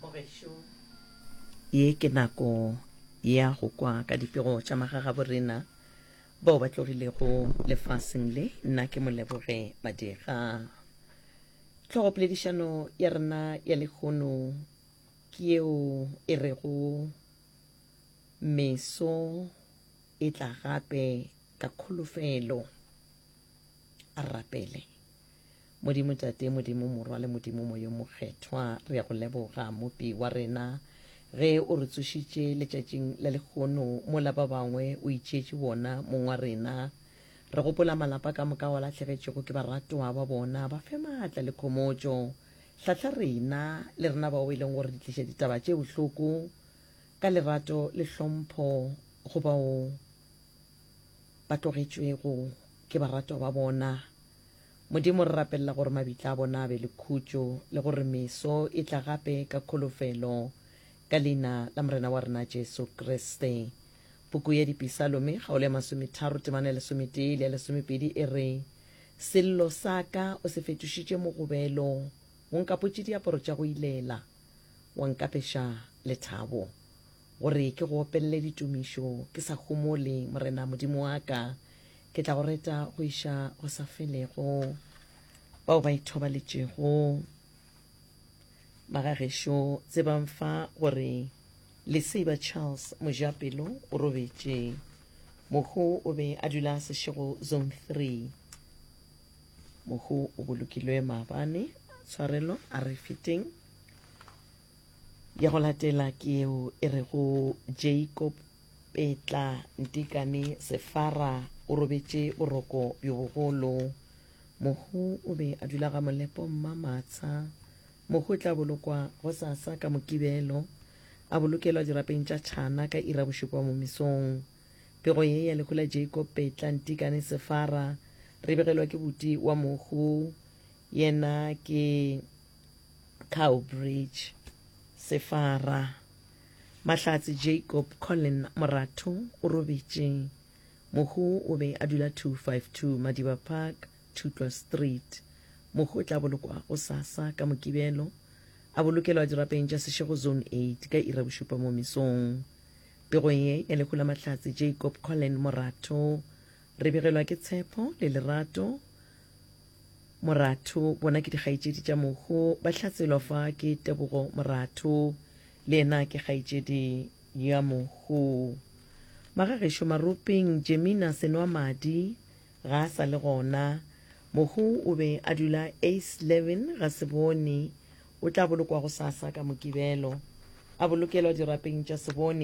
Mo gešo, ye ke nako ya go kwa ka dipego tša magagabo rena bao ba tlogilego lefaseng le. Nna ke Moleboge Madira. Tlhogopoledišano ya rena ya lehono ke yeo e rego Meso e tla gape ka kholofelo. A rapele. Modimo Tate, Modimo Morwa le Modimo Moyo Mokgethwa, re ya go leboga, Mopi wa rena, ge o re tsošitše letšatšing la lekgono mola ba bangwe o itšeetše bona, mong wa rena. Re gopola malapa ka moka wa lahlegetšego ke baratoa ba bona, ba fe maatla le khomotšo. Hlahla rena, le rena bao e leng gore di tliša ditaba tše bohloko, ka lerato le hlompho go bao ba tlogetšwego ke baratoa ba bona. Modimo, re rapelela gore mabitla a bona a be le khutšo le gore meso e tla gape ka kholofelo. Ka Leina la Morena wa rena Jesu Kriste. Puku ya Dipisalome, kgaolo ya masometharo, temana ya lesometee le ya lesomepedi e re, Sello sa ka o se fetošitše mogobelo, o nkapotše diaparo tša go ilela, wa nkapeša lethabo. Gore ke go opelele ditumišo ke sa humole, Morena Modimo wa ka, ke tla go reta go iša go sa felego. Bao ba ithobaletšego ba ga gešo tsebang fa gore Lesiba Charles Mojapelo o robetše. Mohu o be a dula Seshego Zone 3. Mohu o bolokilwe maabane. Tshwarelo a re feteng. Ya go latela ke yeo e rego Jacob Petla Ntikane Sefara o robetše boroko bjo bogolo. Mohu o be a dula ga Molepo Mmamatsha. Mohu o tla bolokwa gosasa ka Mokibelo, a bolokelwa dirapeng tša Tšhana ka ira bošupa mo mesong. Pego ye ya lehu la Jacob Petla Ntikane Sefara re begelwa ke buti wa mohu, yena ke Cowbridge, Sefara, Mahlatse Jacob Colin Moratho o robetše. Mohu o be a dula 252 Madiba Park, Thutlwa Street. Mohu o tla bolokwa go sasa ka Mokibelo, a bolokelwa dirapeng tša Seshego Zone 8 ka iri ya bošupa mo mesong. Pego ye ya lehu la Mahlatse Jacob Colin Moratho re begelwa ke tshepo le lerato Moratho, Bona ke dikgaetšedi tša Mogo, ba hlatswelwa fa ke Tebogo Moratho. Le yena ke kgaetšedi ya Mogo. Magagešo Maropeng, Jemina Senwamadi ga a sa le gona. Mogo o be a dula Eisleben, Gaseboni. O tla bolokwa gosasa ka Mokibelo. A bolokelwa dirapeng tša Seboni.